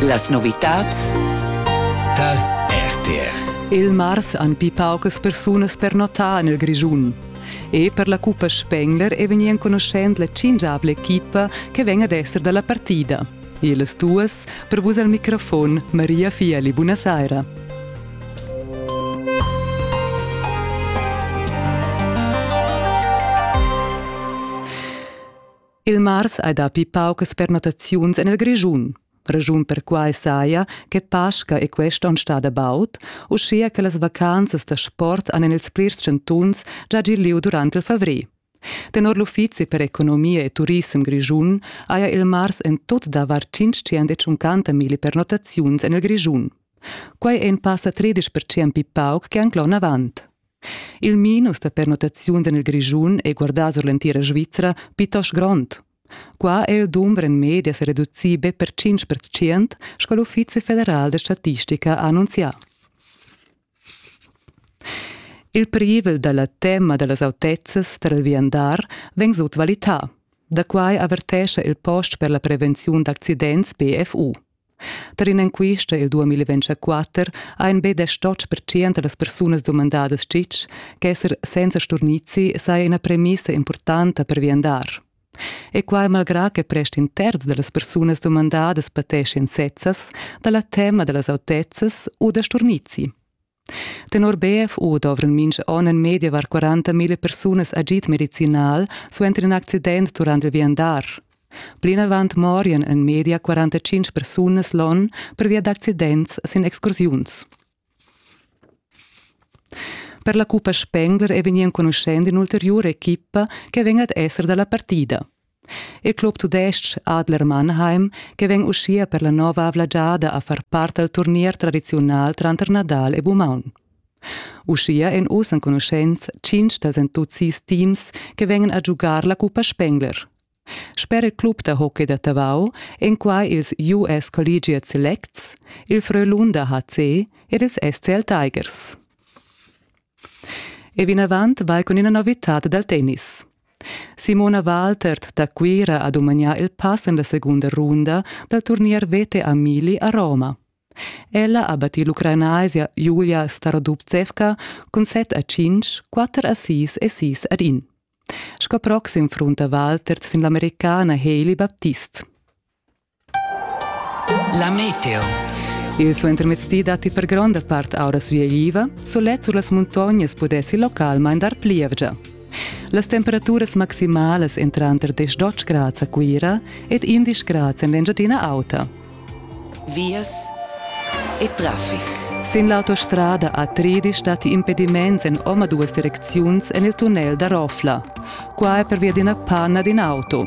Las novitads tar RTR. Il mars han pli paucas persunas pernotà en il Grischun. E per la cuppa Spengler è vegnì enconuschent la cingiavla equipa che vegn ad esser da la partida. Ils duas per vus al microfon Maria Fieli. Buonasera. Il mars hai dapi paucas pernottaziuns en il Grischun. Ragiun perquai saja che Pasca e quest onn stada baud, uschia che las vacanzas da sport han en ils plirs chantuns già gì lieu durant il favrer. Tenor l'Uffizi per economia e turissem grischun haja il mars en tut davar 550 mila pernottaziuns en il Grischun. Quai è in passa 13% pli pauc che anc l'onn avant. Il minus da pernottaziuns en il Grischun è guardà sur l'entira Svizra plitost grond. Qua è il dumber en media sa reducì be per 5 percent, sco l'Uffizi federal da statistica ha annunzià. Il privel da la tema da las autezzas tar il viandar vegn sutvalità. Da quai avertescha il post per la prevenziun d'accidents BFU. Tar in'enquista il 2024 ha in betg totg percent da las persunas dumandadas tgitg ch'esser senza sturnizi saja ina premissa impurtanta per viandar. E quai malgrà che prest in terz da las persunas dumandadas pateschian sezzas da la tema da las autezzas u da sturnizi. Tenor BFU dovran mincha on en medievar 40.000 persunas agid medicinal suenter in accident durant il viandar. Plinavant morian en media 45 persunas l'on pervia d'accidents sin excursiuns. Per la Cuppa Spengler è vegnì enconuschenta in'ulteriura equipa che vegn ad esser dalla partida. Il club tudestg Adler Mannheim, che vegn uschia per la nova avla giada a far part dal turnier tradiziunal tranter Nadal e Bumaun. Uschia èn oz enconuschents tschintg dals entuzids teams che vegnan a giugar la cuppa Spengler. Sper il club da hockey da Tavau èn quai ils US Collegiate Selects, il Frölunda HC ed ils SCL Tigers. E vinavant vai cun ina novitad dal tennis. Simona Waltert da Cuira ha dumagnà il pass en la segunda runda dal turnier vete a Mili a Roma. Ella ha battì l'ucranaisia Julia Starodubtsevka cun set a cinc, quatter a sis e sis ad in. Sco proxim frunta Waltert sin l'Americana Hailey Baptist. La meteo. Il suentermezdi datti per gronda part auras viegliva, sulet sur las muntognas pudessi localmain dar plievgia. Las temperaturas maximalas èn tranter 10 grads a Cuira ed 11 grads en l'Engiadina Auta. Vias e traffic. Sin l'autostrada a Tridi statti impediments en omaduas direcziuns en il tunnel da Rofla. Qua è pervia d'ina panna d'in auto.